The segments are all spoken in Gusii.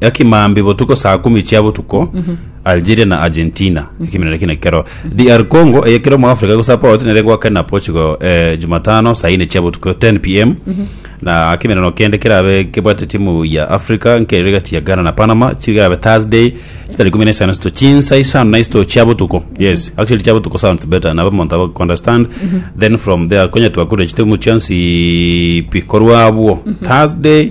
ekimambi botuko saa kumi chia botuko algeria na argentina ekiminera kine kero dr congo eye kero mu africa gosapoti nere gwake na portugal eh, jumatano saa ine chia botuko 10 pm na kiminano kende kerabe kebwate timu ya africa nkerere gati ya ghana na panama chigerabe thursday chitari kumi na isano sito chinsa isano na isito chia botuko yes actually chia botuko sounds better nabo monto abo understand then from there konya twakure chitimu chionsi pikorwa abwo thursday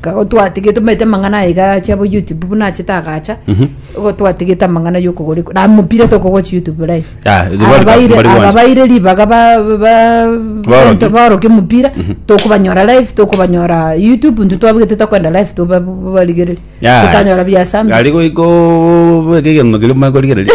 Kago twatigete omanyete amang'ana aye iga ache abo YouTube buna achete agacha igo twatigete amang'ana y'okogora iko- na mupira tokogochi YouTube live Ah, the Aba World Cup, baire- mbari aba gwancha. baire ribaga ba- ba- ba- Baoroki. bento baoroki omopira tokobanyora live tokobanyora YouTube intwe twabegete tokoenda live toba- babarigereria Ya. totanyora biasami Gari goiko bweka egento kiri mwe korigereria.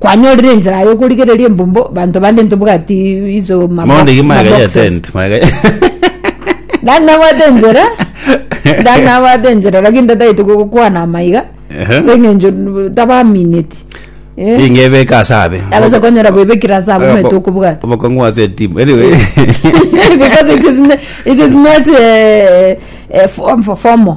Kwanyorire enchera yokorigereria embumbo banto bande ntobwati iso ma box- Maonde ki ma magega ya boxes. tent, magega ya- Nani nabwate enchera nani nabwate enchera lakini tataete gokwana amaiga Ehe. ase eng'encho n- tabamineti Eh, Tingebeka ase abe. abase konyora bwebekire ase abo omanyete okobwata Obokong'u ase etimu. Anyway. because it is, n- it is not uh, uh, form for formal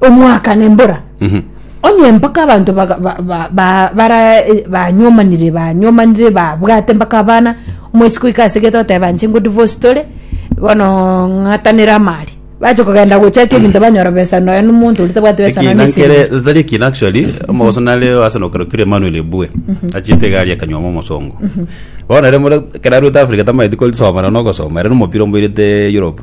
Omwaka nembora, onye mpaka abanto baranyomanire banyomanire babwate mpaka abana omoisi goika ase egete oteba inche ngo divorce tore bono ng'atanere amari bache kogenda gochaka ebinto banyora besa nonya na omonto oria tabwati besa nonya na esegi tari ekina actually omogoso nare ase nokorokire Emmanuel Ebue achiete egari akanyuoma omosongo bono ere ekero arwete Africa tamanyeti kosoma nonya na ogosoma ere nomopira omoirete Europe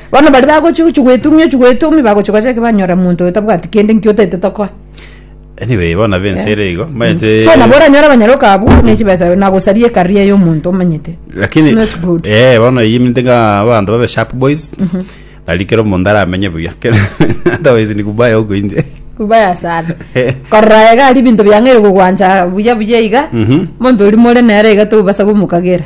Bono baria bagochia gochia gwetumia ochia gwetumia bagochia gocha eke banyora monto oyo tabwati kende nki otaete tokoe. Anyway, bono abe ense ere igo, omanyete- So nabo oranyore abanyaroka abwo buna echibesa na gosaria ecareer ya omonto omanyete. lakini It's not good. eh bono eyio eminto ng'a abanto babe sharp boys nari kera omonto aramenye buya kera otherwise ni kubaya huko inje Kubaya sana. Korora iga ari ebinto biang'aire gogwancha buya buya iga. Mhm. Monto oria more nere iga tobasa gomokagera.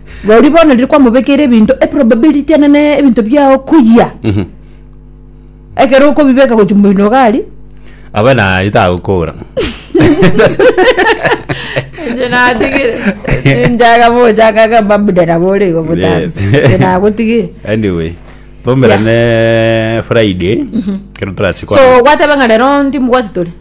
Roria bono riria kwamobekeire ebinto, eprobability enene ebinto biao koyia. Ekero okobibeka gochia moino iga aria. Abe nari tagokora. Inche natigire. Ninjaga mochaka iga mbabude nabo ore igo botambe. Yes. Inche nagotigire. anyway twaumera ne friday kero turache kwa So gwateba ng'a rero ntimobwati tore.